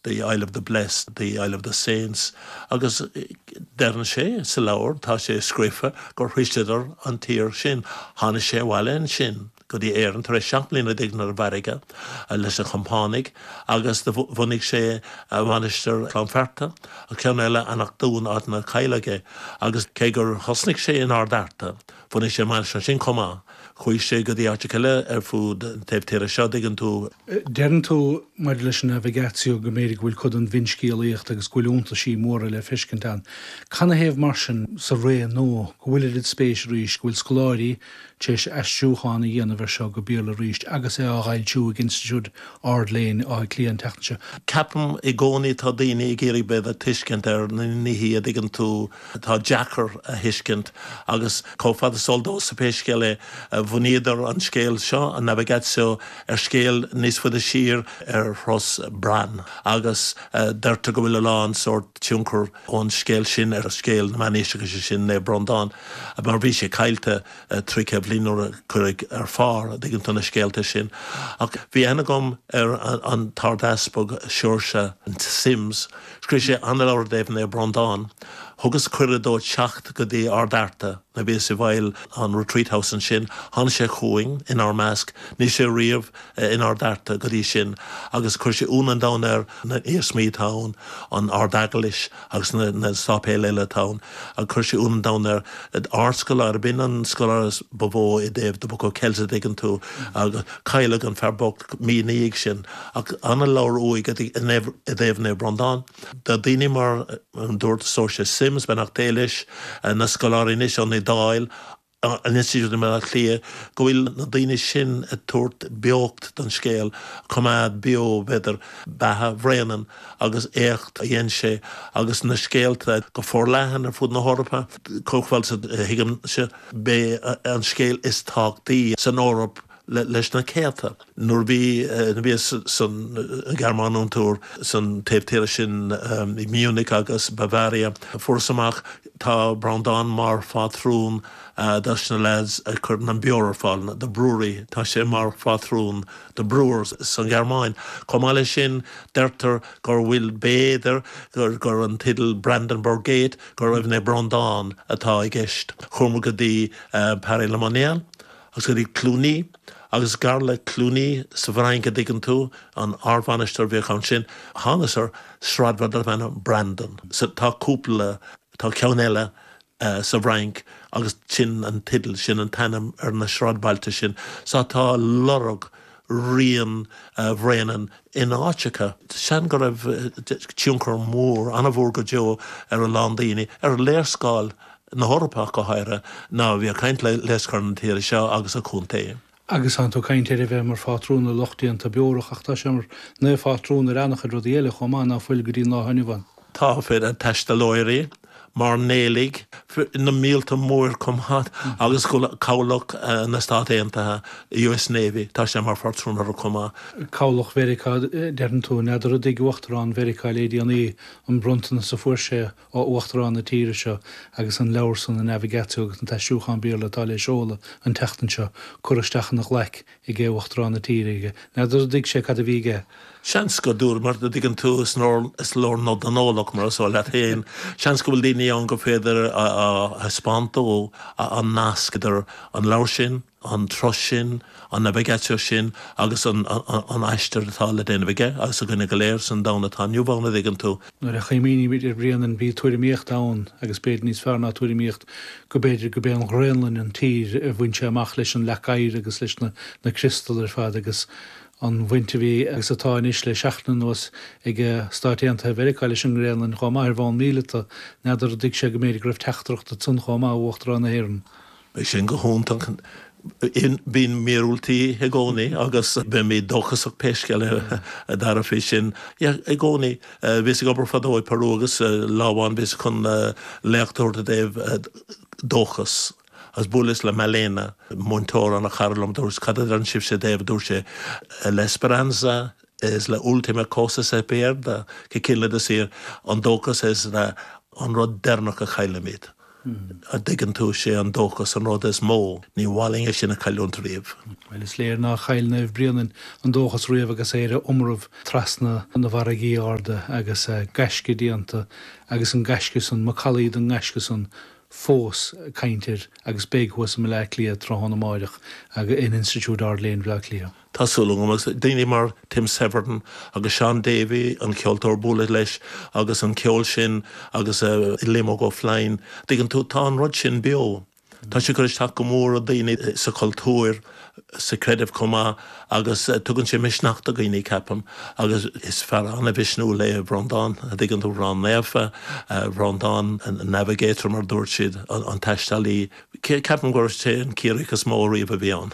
the Isle of the Blest, the Isle of the Saints, agus deireann sé sa leabhar, tá sé scríofa, gur shroiseadar an tír sin. Tháinig sé abhaile ansin go dtí Éirinn tar éis seacht mbliana dtuigeann tú, ar an bhfarraige leis na compánaigh agus do bhunaigh sé a mhainistir Cluain Fearta, ceann eile Eanach Dúin, áit inar cailleadh é, agus cé gur thosnaigh sé in Ard Fhearta, Bhunaigh sé mainistir ansin chomh maith. Chuaigh sé go dtí áiteacha eile ar fud an taobh tíre seo, dtuigeann tú. Deireann tú maidir leis an navigatio go mb'fhéidir go bhfuil cuid den bhfinscéalaíocht agus go bhfuil iontaisí móra le feiscint ann. Canathaobh mar sin, sa ré nua, go bhfuil oiread spéis arís, go bhfuil scoláirí tar éis aistriúchán a dhéanamh ar seo go Béarla arís agus é á dh'fhoilsiú ag Institiúid Ard-Léinn Átha Cliath an tseachtain seo? Ceapaim i gcónaí atá daoine ag iarraidh bheith ag tuiscint ar na nithe, a dtuigeann tú. atá deacair a thuiscint, agus chomh fada is eol domhsa, pé scéal é, bhunaíodar an scéal seo, an navigatio, ar scéal níos faide siar ar thuras Bran, agus deirtear go bhfuil a lán sórt tionchar ón scéal sin ar scéal na meánaoiseachais, is sin Naomh Brondán, mar bhí sé caillte trí chéad bliain nuair a cuireadh ar phár, an dtuigeann tú, na scéalta sin. Ach bhí aithne agam ar an tArdeaspag Seoirse Simms, Scríobh sé an-leabhar i dtaobh Naomh Breandán. Thugas cuireadh dó teacht go dtí Ard Fhearta. Nuair a bhíos i bhfeighil an Retreat House ansin, tháinig sé chugainn, inár measc, ní raibh sé riamh in Ard Fhearta go dtí sin, agus chuir sé ionadh an domhain air na hiarsmaí atá ann, an Ard-Eaglais agus na sáipéil eile atá ann. Chuir sé ionadh an domhain air, ardscoláire, b'in an scoláire ba mhó i dtaobh The Book of Kells a dtuigeann tú, agus cailleadh an fear bocht. mí ina dhiaidh sin, ach ana leabhar uaidh i dtaobh Naomh Brondán. Tá daoine mar an Dochtúir Seoirse Simms, Beannacht Dé leis, na scoláirí anois ón Iodáil, an Institiúid i mBaile Átha Cliath, go bhfuil na daoine sin ag tabhairt beocht don scéal, coimeád beo, b'fhéidir, beatha Bhréanainn agus éacht a dhein sé agus na scéalta go forleathan ar fud na hEorpa. Chomh fada is a thuigimse, b'é an scéal is tábhachtaí san Eoraip leis na céadta. Nuair a bhí nuair a bhíos san Ghearmáin on tour san taobh tíre sin, i Munich agus Bavaria, fuaireas amach tá Breandán mar phátrún do sna lads a chuireann an beoir ar fáil, the brewery, tá sé mar phátrún do brewers san Ghearmáin. Chomh maith leis sin deirtear gur bhfuil, b'fhéidir gur an teideal Brandenburg Gate, gurbh é Naomh Breandán atá i gceist. Chuamar go dtí Paray-le-Monial. Agus go dtí Cluny, agus gar le Cluny sa bhFrainc, a' dtuigeann tú, an ardmhainistir a bhíodh ann sin, thánas ar sráidbhaile darbh ainm Brandon. Sea, tá cúpla, tá ceann eile sa bhFrainc agus sin an teideal, sin an t-ainm ar na sráidbhailte sin. Sea, tá lorg rian Bhréanainn in áiteacha. San, go raibh tionchar mór, an-mhór go deo ar a lán daoine, ar léarscáil na hEorpach go háirithe, ná bí ag caint ar léarscáil na tíre seo agus a contae. Agus tánn tú ag caint ar a bheith mar phátrún ar lucht déanta beorach, ach tá sé mar naomhphátrún ar an-chuid rudaí eile chomh maith ná fuil go dtí'n lá inniu ann. Tá, fiú taistealaithe, mairnéalaigh, fir na míolta mór chomh maith agus cabhlach na Stát Aontaithe, US Navy, tá sé mar phátrún orthu chomh maith. Cabhlach Mheiriceá, deireann tú? N'fheadar ar thuig Uachtarán Mheiriceá le déanaí an bronntanas a fuair sé ó Uachtarán na tíre seo agus an leabhar san, an Navigatio agus an t-aistriúchán Béarla atá le seoladh an tseachtain seo, curtha isteach ina ghlaic aige, Uachtarán na tíre, aige. N'fheadar ar thuig sé cad a bhí aige? Seans go ndúramar, a' dtuigeann tú, is leor nod don eolach, mar is eol leat féin. Seans go bhfuil daoine ann gur féidir a thaispeáint dó an nasc idir an leabhar sin, an turas sin, an navigatio sin agus an aistear atá le déanamh aige agus againne go léir san domhan atá inniu ann, a' dtuigeann tú? Nuair a chuimhnímid ar Bhréanainn, bhí tuairimíocht ann, agus b'fhéidir níos fearr ná tuairimíocht, go b'fhéidir go b'é an Ghraonlainn an tír a bhain sé amach leis an leac oighir agus leis na na criostal ar fad agus an bhaint a bhí, agus atá anois le seachtain anuas, ag Stáit Aontaithe Mheiriceá leis an nGraonlainn, chomh maith ar bhonn míleata. N'fheadar ar thuig sé go mb'fhéidir go raibh teachtaireacht ansan chomh maith ó Uachtarán na hÉireann. Bheadh sin go hiontach. Bíonn míorúiltí i gcónaí agus beimid dóchasach pé scéal é, a Dara, faoi sin. I gcónaí, bhíos ag obair fadó i Peru agus lá amháin bhíos chun léacht a thabhairt i dtaobh dóchais agus bhuaileas le Malena, múinteoir an-chara liom. Dúirt, cad a deireann sibhse i dtaobh, a dúirt sé, la esperanza es la última cosa que se pierde, go cinnte is fíor, an dóchas is an rud deireanach a chaillimid. an dtuigeann tú, sé an dóchas an rud is mó, ní féidir é sin a cailliúnt riamh. Bhuel, is léir nár chaill Naomh Bréanainn an dóchas riamh agus é ar a iomramh trasna na farraigí arda agus gaisce déanta agus an gaisce san, macallaí den ngaisce san fós ag caint air agus beidh thuas i mBleá Cliath tráthnóna amáireach in Institiúid Ard-Léinn Bhleá Cliath. Tá súil agam, agus daoine mar Tim Severin agus Shaun Davey, an ceoltóir, bualadh leis agus an ceol sin agus Liam Óg Ó Floinn, tuigeann tú, tá an rud sin beo. Tá sé ag cur isteach go mór ar daoine sa chultúr, sa chreideamh chomh maith agus tugann sé misneach do dhaoine, ceapaim, agus is fear an-mhisniúil é Breandán, tuigeann tú, Bran Naofa, Breandán Navigator mar a dúirt siad, an taistealaí. Ceapaim gur sé an Ciarraíoch is mó ariamh a bhí ann.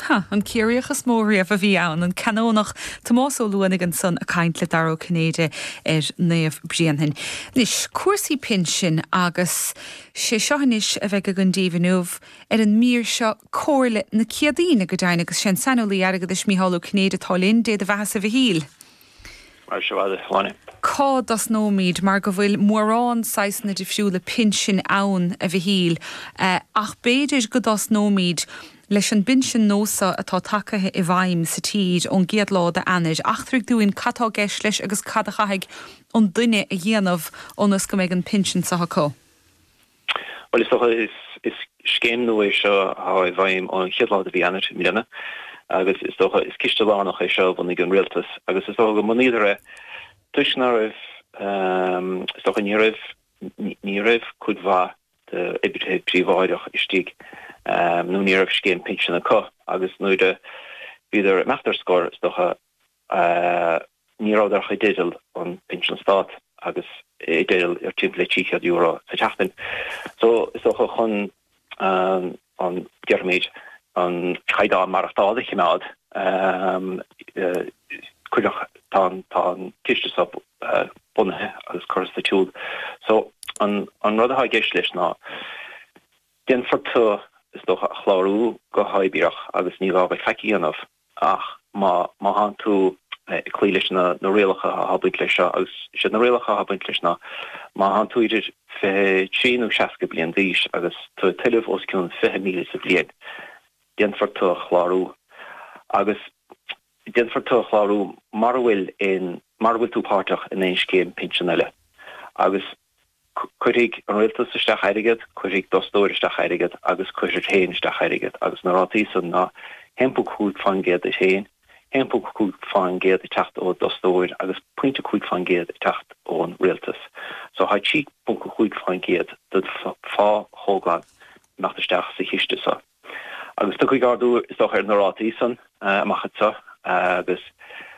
Hea, an Ciarraíoch is mó riamh a bhí ann, an Canónach Tomás Ó Luanaigh ansan a' caint le Dara Ó Cinnéide ar Naomh Bréanfainn. Anois, cúrsaí pinsin agus. sé seo anois a bheidh againn daoibh inniu ar an mír seo, Comhairle na Ciadaoine, go deimhin, agus sé an saineolaí airgeadais Micheál Ó Cinnéide atá linn, Dé do bheatha-sa Mhichíl! Cá dtosnóimid mar go bhfuil mórán saghsanna difriúla pinsin ann, a Mhichíl, ach b'fhéidir go dtosnóimid leis an bpinsean nua so atá tagtha i bhfeidhm sa tír ón gcéad lá d'Eanáir. Eachtraigh dúinn cad tá i gceist leis agus cad a chaithfidh an duine a dhéanamh ionas go mbeidh an pinsean seo acu. Bhuel, is dócha, is scéim nua é seo atá i bhfeidhm ón chéad lá de mhí Eanáir i mbliana agus is dócha, is ciste lárnach é seo a bhunaigh an rialtas agus is dócha gur bhunaíodar é toisc ná raibh, is dócha, ní raibh, ní raibh cuid mhaith d'oibrithe príobháideach istigh nó ní raibh scéim pinsin acu agus nuair a bhíodar imeacht ar scor, is dócha, ní rabhadar ach i dteideal an pinsean stáit agus i dteideal timpeall le €300 sa tseachtain so, is dócha, chun an, déarfaimid, an caighdeán maireachtála a chimeád. Cuireadh, tá an, tá an ciste so bunaithe agus curtha sa tsiúl so, an, an rud atá i gceist leis ná, déanfar tu, is dócha, a chlárú go huathoibríoch agus ní gá dhuit faic a dhéanamh. ach má thánn tú ag cloí leis na rialacha atá ag baint leis seo, agus is iad na rialacha atá ag baint leis ná, má thánn tú idir fiche trí nó seasca bliain d'aois agus tú ag tuilleamh os cionn fiche míle sa bhliain, déanfar tu a chlárú. Agus déanfar tu a chlárú mura bhfuil aon, mura bhfuil tú páirteach in aon scéim pinsin eile. Agus. Cuirfidh an rialtas isteach airgead, cuirfidh d'fhostóir isteach airgead agus cuirfir féin isteach airgead agus na rátaí san ná 1.5 fán gcéad duit féin, 1.5 fán gcéad ag teacht ó d'fhostóir agus pointe cúig fán gcéad ag teacht ón rialtas. So tá 3.5 fán gcéad den phá atá ag imeacht isteach sa chiste san. Agus tiocfaidh ardú, is dócha, ar na rátaí san amach anseo, agus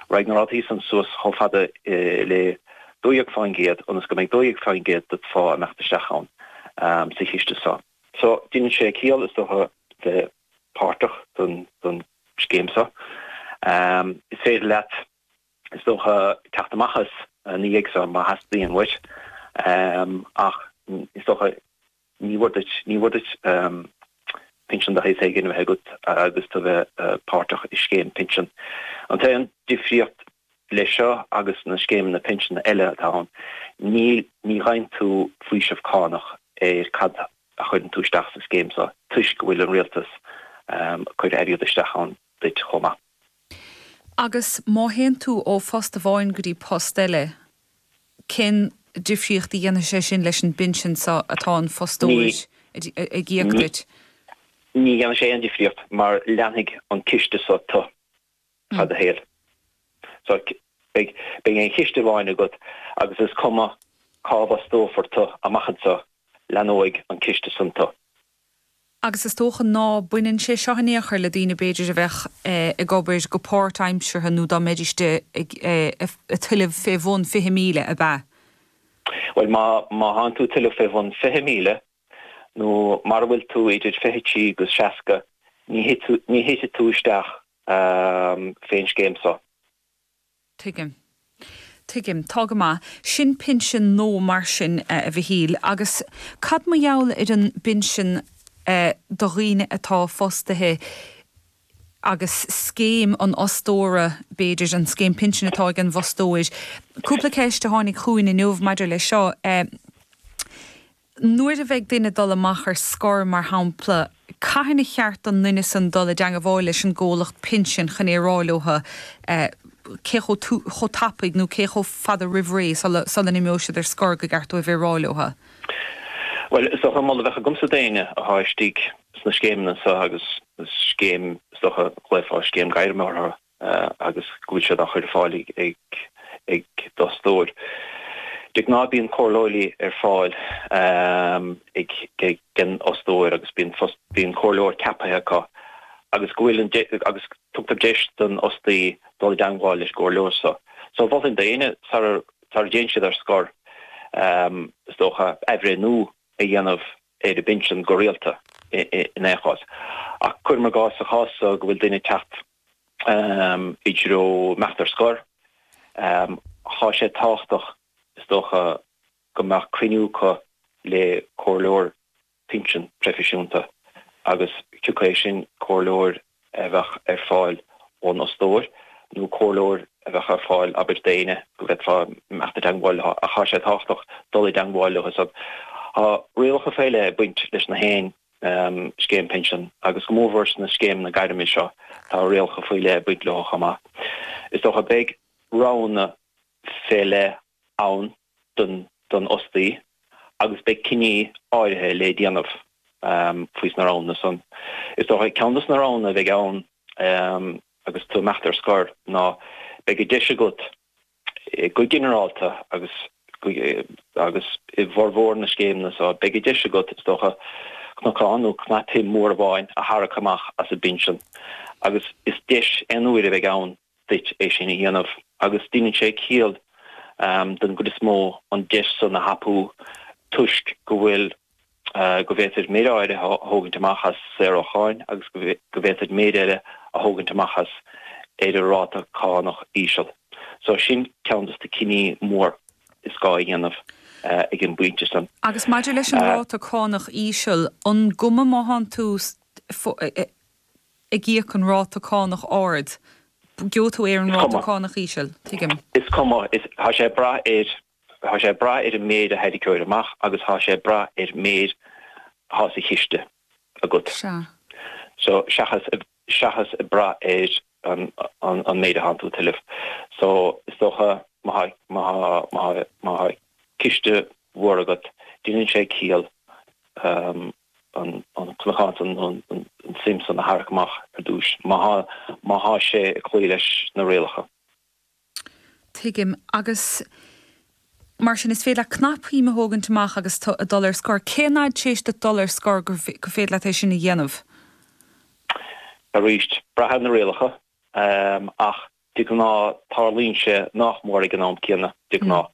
raghaidh na rátaí san suas chomh fada le 12% ionas go mbeidh 12% dod phá ag imeacht isteach ann sa chiste seo. So, déanann sé ciall, is dócha, bheith páirteach don scéim so. Is féidir leat, is dócha, teacht amach as, ina dhiaidh san, má theastaíonn uait, ach is dócha, Ní mór duit, ní mór duit pinsean de shaghas éigin a bheith agat agus tu bheith páirteach i scéim pinsin. An t-aon difríocht leis seo agus na scéimeanna pinsin eile atá ann, ná, ní fhaigheann tú faoiseamh cánach ar cad a chuireann tú isteach sa scéim so toisc go bhfuil an rialtas ag cur airgead isteach ann duit chomh maith. Agus má théann tú ó phost amháin go dtí post eile, cén difríocht a dhéanfaidh sé sin leis an bpinsean seo atá an fostóir ag íoc duit? Ní dhéanfaidh sé aon difríocht mar leanfaidh an ciste so tu feadh do shaoil. So beidh aon chiste amháin agat agus is cuma cá bhfostófar tu amach anso, leanóidh an ciste san tu. agus is dócha ná baineann sé seo in aon chor le daoine b'fhéidir a bheadh ag obair go páirtaimseartha nó dá mbeidís ag tuilleamh fé bhun fiche míle, ab ea? Bhuel, má thánn tú ag tuilleamh fé bhun fiche míle, nó mara bhfuil tú idir fiche trí agus seasca, ní thitfidh tú isteach fén scéim so. Tuigim. Tuigim. Tá go maith. Sin pinsean nua mar sin, a Mhichíl. Agus cad mar gheall ar an bpinsean do dhaoine atá fostaithe agus scéim an fhostóra, b'fhéidir, an scéim pinsin atá ag an bhfostóir? Cúpla ceist a tháinig chugainn inniu maidir leis seo. nuair a bheidh duine ag dul amach ar scor, mar shampla, cathain ba cheart don duine san dul i dteangabháil leis an gcomhlacht pinsin chun é a rá leotha cé chomh tapaidh nó cé chomh fada roimh ré sula n-imeoidh siad ar scor gur ceart dóibh é a rá leotha? Bhuel, is dócha an moladh a bheadh agamsa d'éinne athá istigh sna scéimeanna seo, agus is scéim, is dócha, ghlaofá scéim gairme orthu, agus go bhfuil sé á chur ar fáil ag d'fhostóir. De ghnáth bíonn comhairleoirí ar fáil ag an bhfostóir agus bíonn comhairleoir ceaptha acu agus go bhfuil agus tugtar deis don fhostaí dul i dteangmháil leis an gcomhairleoir seo. So mholfainn d'éinne sara dtéann siad ar scor, is dócha, athbhreithniú a dhéanamh ar a bpinsean go rialta in aon chás. Ach cuirim i gcás, sa chás so go bhfuil duine ag teacht i dtreo imeacht ar scor. Tá sé tábhachtach, is dócha, go mbeadh cruinniú acu le comhairleoir pinsean proifisiúnta agus thiocfadh é sin, comhairleoir a bheadh ar fáil ón fhostóir nó comhairleoir a bheadh ar fáil, abair, d'aoinne go bhféadfá imeacht i dteagmháil leo. Ach tá sé tábhachtach dul i dteagmháil leo. Tá rialacha faoi leith ag baint leis na haon. scéim pinsin, agus go mórmhór sna scéimeanna gairme seo, tá rialacha faoi leith ag baint leo chomh maith. Is dócha, beidh roghanna fé leith ann don fhostaí agus beidh cinní áirithe le déanamh faoi sna roghanna san. Is dócha, ceann de sna roghanna a bheidh ann agus tú imeacht ar scor ná beidh an deis agat, Go ginearálta, agus agus i bhformhór na scéimeanna seo, beidh an deis agat, is dócha, cnocán nó cnapshuim mhór amháin a tharrac amach as an bpinsean, agus is deis aon uaire a bheidh ann duit é sin a dhéanamh, agus deineann sé ciall, don gcuid is mó, an deis san a thapú toisc go bhfuil, go bhféadfá méid áirithe a thógaint amach as saor ó cháin agus go bhféadfá méid eile a thógaint amach as ar an ráta cánach íseal. So sin ceann dos na cinní mór is gá a dhéanamh ag an bpointe san. Agus maidir leis an ráta cánach íseal, an cuma má thánn tú ag íoc an ráta cánach ard, geobhaidh tú ar an ráta cánach íseal, tuigim? Is cuma, tá sé ag brath ar. Thá sé ag brath ar an méid a tharraingeofá amach agus thá sé ag brath ar méid athá sa chiste agat. Sea. So, seachas, seachas ag brath ar an, an, an méid a thánn tú a thuilleamh. So, is dócha má thá, má thá, má thá, má thá ciste mhór agat, deineann sé ciall an, an cnocán san, an, an, an suim san a tharrac amach ar dtúis, má thá, má thá sé ag cloí leis na rialacha. Tuigim. Agus mar sin, is féidir leat cnapshuim a thógaint amach agus tú ag dul ar scor. Cén fhad théis duit dul ar scor gur féidir leat é sin a dhéanamh? Arís, braitheann na rialacha, ach de ghnáth tarlaíonn sé nach mór ag an am céanna, de ghnáth.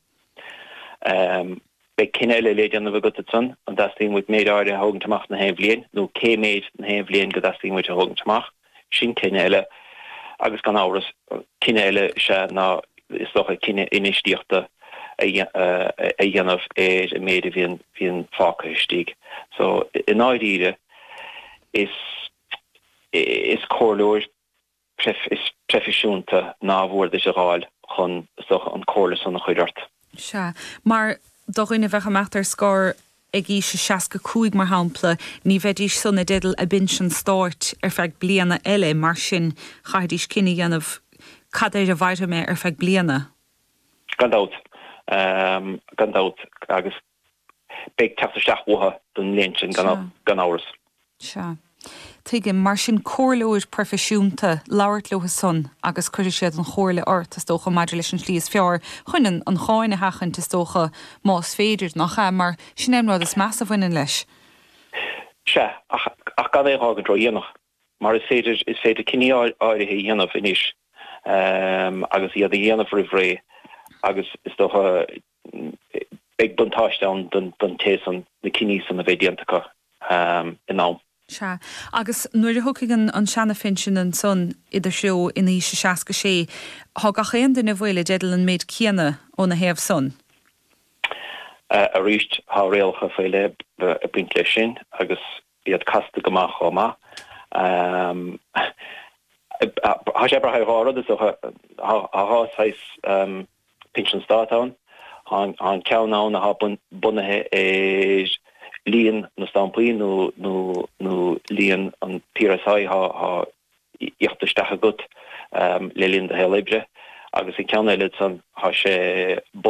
Beidh cinneadh eile le déanamh agat ansan, an dteastaíonn uait méid áirithe a thógaint amach na haon bhliain, nó cé méid na haon bhliain go dteastaíonn uait a thógaint amach. Sin cinneadh eile, agus gan amhras, cinneadh eile is ea ná, is dócha, cinneadh infheistíochta a dhéanamh ar an méid a bhíonn fágtha istigh. So, i ndáiríre, is comhairleoir. is proifisiúnta nárbh fhearr duit a fháil chun sochaithe an chomhairle san a chur ort. Sea, mar do dhaoine a bheadh ag imeacht ar scor ag aois a 65 mar shampla, ní bheidís san i dteideal a bpinsean stáit ar feadh bliana eile, mar sin chaithfidís cinneadh a dhéanamh cad air a mhairfidh mé ar feadh bliana. Gan dabht, gan dabht, agus Beidh teacht isteach uathu don mbliain sin gan amhras. Sea. Tuigim. Mar sin, comhairleoir proifisiúnta, labhairt leo san agus cuirfidh siad an chomhairle ort, is dócha, maidir leis an tslí is fearr chun an an cháin a sheachaint, is dócha, más féidir, nach ea? Mar sin é an rud is measa a bhaineann leis. Sea, ach gan é a fhágaint ródhéanach. Mar is féidir, is féidir cinneadh áirithe a dhéanamh anois agus iad a dhéanamh roimh ré agus is dócha beidh buntáiste ann don té san na cinní san a bheith déanta acu in am. Sea, agus nuair a thiocfaidh an seana-phinsean ansan id threo in aois a seasca sé, tá gach aon duine a bhfuil i dteideal an méid céanna óna thaobh san. Sea, arís, tá rialacha faoi leith ag baint leis sin agus iad casta go maith chomh maith. Tá sé ag brath ar dhá rud, is dócha. Tá dhá shaghas pinsean stáit ann. Tá an ceann ann atá bunaithe ar líon na stampaí nó líon an PRSI atá íoctha isteach agat le linn do shaol oibre agus an ceann eile ansan tá sé